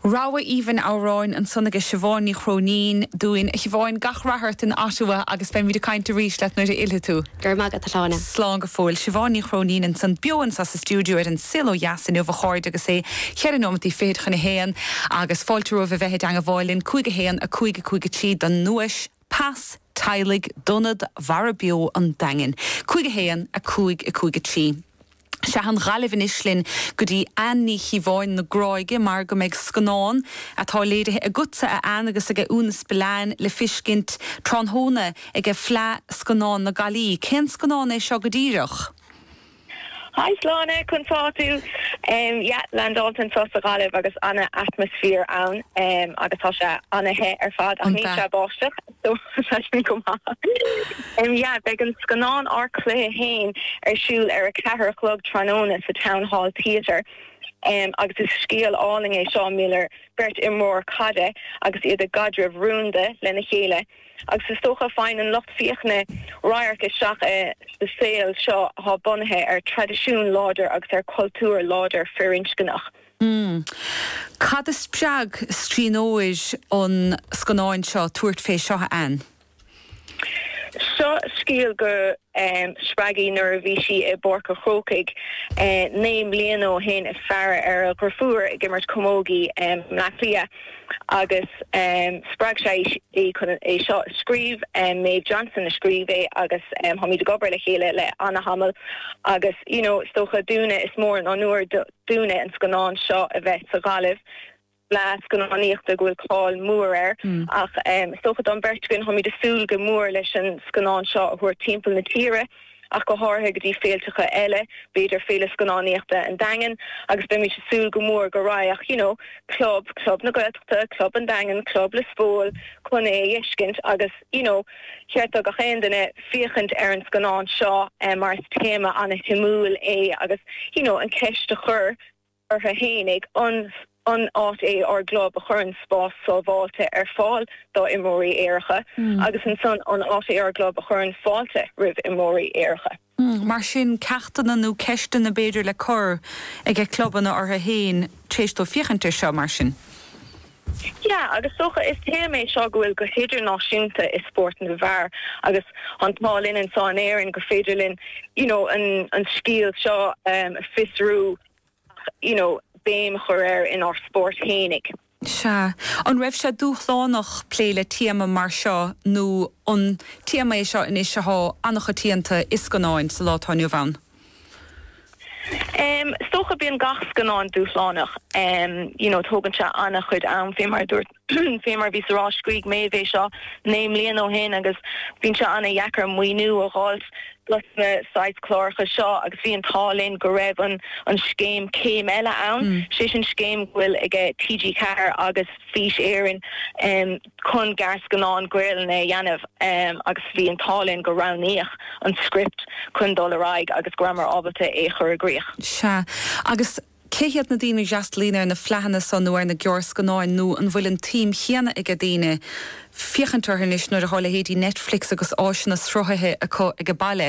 Rogha aoibhinn amhráin ansan aige Siobhán Ní Chróinín dúinn. A Shiobháin, gach rath ort in Ottawa agus beimid ag caint arís leat nuair a fhillfidh tú. Go raibh maith agat, a Shláine. Slán go fóill. Siobhán Ní Chróinín ansan beo anso sa stiúideo ar An Saol Ó Dheas inniu, a chairde, agus é cheithre nóimeataí fichid chun a haon. Agus fáilte romhaibh a bheith i dteangabháil linn, cúig a haon, a cúig, a cúig a trí don nduais. Pas teaghlaigh d'ionad Mara Beo an Daingin, 5 1, 5 5 3. Sea, an Ghaillimh anois linn go dtí Ann Ní Chíobháin na Gráige mar go mbeidh scannán, atá léirithe agatsa a Ann agus ag Úna Spillane, le feiscint tráthnóna ag Fleadh Scannán na Gaillí. Cén scannán é seo go díreach? Hi Sláine conas tánn tú. Yeah lean Dalton sa Ghaillimh agus ana atmaisfear ann agus tá sé ana the ar fad ach níl sé ag báisteach so tá sin go maith. Yeah beidh an scannán Ár Cluiche Fhéin ar siúl ar a ceathair a chlog tráthnóna sa Town Hall Theatre agus is scéal álainn é seo idir beirt imreoir caide agus iad i gcaidreamh rúnda lena chéile. Agus is dócha, faigheann an lucht féachana radharc isteach sa saol seo atá bunaithe ar traidisiún láidir agus ar cultúr láidir firinscneach. Cad a spreag scríbhneoir an scannáin seo tabhairt fé seo, a Anne? Seo scéal go. spreag í nuair a bhí sí i bPáirc an Chrócaigh naoi mbliana ó shin, ag faire ar a driofúr ag imirt camógaíocht i mBleá Cliath agus spreag sé í chun é seo a scríobh. Maeve Johnson a scríobh é agus táimid ag obair le chéile le ana-thamall agus you know is dócha dúinne is mór an onóir dúinne an scannán seo a bheith sa Ghaillimh. Fleá scannánaíochta go bhfuil cáil mhór air ach is dócha don bheirt againn táimid ag súil go mór leis an scannán seo a thabhairt timpeall na tíre ach go háirithe go dtí féilteacha eile, b'fhéidir Féile Scannánaíochta an Daingin agus beimid ag súil go mór go raghadh you know club, club na Gaeltachta, club an Daingin, club Liospóil chun é a fheiscint agus you know cheart do gach aon duine féachaint ar an scannán seo mar is téama an-shuimiúil é agus you know an cheist a chur ortha fhéinig. An áit é ár gclub a chuireann spás sábháilte ar fáil dá imreoirí aeracha agus ansan an áit é ár gclub a chuireann fáilte roimh imreoirí aeracha. Mar sin ceachtanna nó ceisteanna b'fhéidir le cur ag ag clubanna ortha fhéin tar éis dóibh féachaint ar seo mar sin. Yeah agus dócha is téama é seo go bhfuil go hidirnáisiúnta i spórt na bhfear agus an t-ádh linn anseo in Éirinn gur féidir linn you know an scéal seo a fiosrú. you know béim a chur air inár spóirt fhéinig. Sea. An raibh sé dúshlánach plé le téama mar seo nó an téama é seo anois athá an-choitianta i scannáin sa lá atá inniu ann? Em, is dócha bíonn gach scannán dúshlánach. Em, you know tógann sé an-chuid am, fé mar a dúirt. Fé mar a bhíos ag rá scríg Maeve é seo naoi mbliana ó shin agus bíonn sé ana dheacair maoiniú a dh'fháilt dos na saghas clárach seo agus bhí an t-ádh linn go raibh an scéim Céim Eile ann, sé sin scéim go bhfuil aige TG4 agus Fís Éireann chun gearrscannáin Gaolainne a dheanamh agus bhí an t-ádh linn gur roghnaíodh an script chun dul ar aghaidh agus go rabhamar ábalta é a chur i gcríoch. Sea. Agus Cé hiad na daoine a fhreastalaíonn ar na fleadhanna so nó ar na gearrscannáin nó an bhfuil an tsuim chéanna aige daoine féachaint orthu anois nuair atá leithéidí Netflix agus áiseanna sruthaithe acu aige baile?